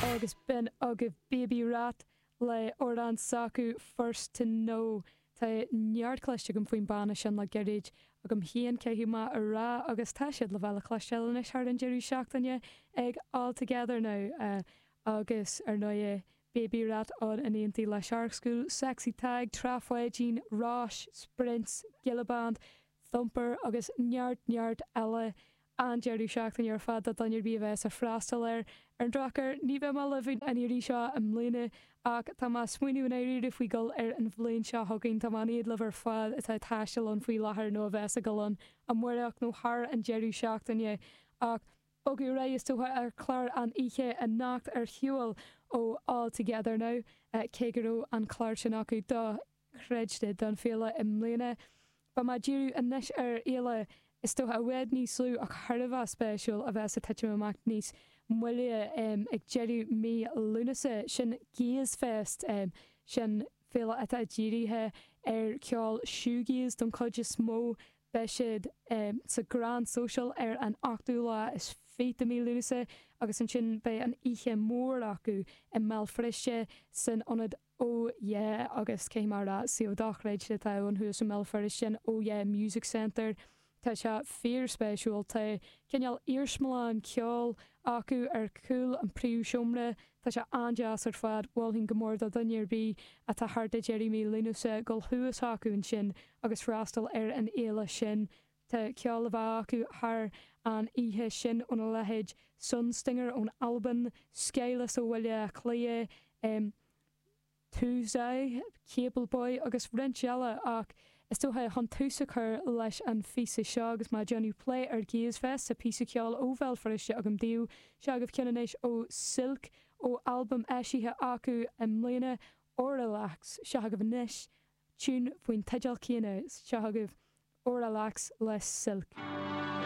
Agus b'in agaibh Baby Rat le amhrán s'acu First To Know. Tá neart cloiste agam faoin banna sin le gairid, agam féin caithfidh mé a rá, agus tá siad le bheith le cloisteáil anois thar an deireadh seachtaine ag All Together Now. Agus, ar ndóigh, Baby Rat ann in éindí le Shark School, Sexy Tadhg, Trá Pháidín, Róis, Sprints, Gilla Band, Thumper agus neart neart eile. An-deireadh seachtaine ar fad do dhuine ar bith a bheas ag freastal air. Ar an drochuair, ní bheidh mé libh an iarraidh seo i mbliana, ach tá mé ag smaoineamh i ndáiríre faoi dul air an bhliain seo chugainn. Tá mé in éad libh ar fad atá ag taisteal ann faoi láthair nó a bheas ag dul ann amáireach nó thar an deireadh seachtaine, ach bogadh ar aghaidh is dócha ar chlár an oíche anocht ar shiúl ó All Together Now, cé go raibh an clár sin acu do. chreidte don féile i mbliana. Beidh mé ag díriú anois ar fhéile is dócha i bhfad níos lú ach thar a bheith spéisiúil a bheas ag titim amach níos moille ag deireadh mí Lúnasa. Sin Gaze Fest, sin féile atá dírithe ar ceol shoegaze don chuid is mó. Beidh siad sa Grand Social ar an 8ú lá is fiche de mí Lúnasa agus ansin beidh an oíche mór acu i mBéal Feirste san Ionad Oh Yeah, agus cé mar a suíomh dochreidte atá ann thuas i mBéal Feirste, Oh Yeah Music Centre, tá sé fíorspéisiúil, tá cineál iarsmalann ceoil acu ar chúl an príomhsheomra, tá sé an-deas ar fad, mholfainn go mór do dhuine ar bith atá thart ag deireadh mí Lúnasa dul suas chucu ansin agus freastal ar an fhéile sin, Tá ceol le bheith acu thar an oíche sin óna leithéid Sunstinger ón Albain, Skyless ó Bhaile Átha Cliath, Touzai, Cable Boy agus roinnt eile ach is dócha chun tús a chur leis an phíosa seo agus mé ag déanamh plé ar Gaze Fest tá píosa ceoil ó Bhéal Feirste agam daoibh, seo agaibh ceann anois ó Silk ó albam eisithe acu i mbliana, Auralux. Seo agaibh anois Tune faoin teideal céanna seo agaibh, Auralux le Silk.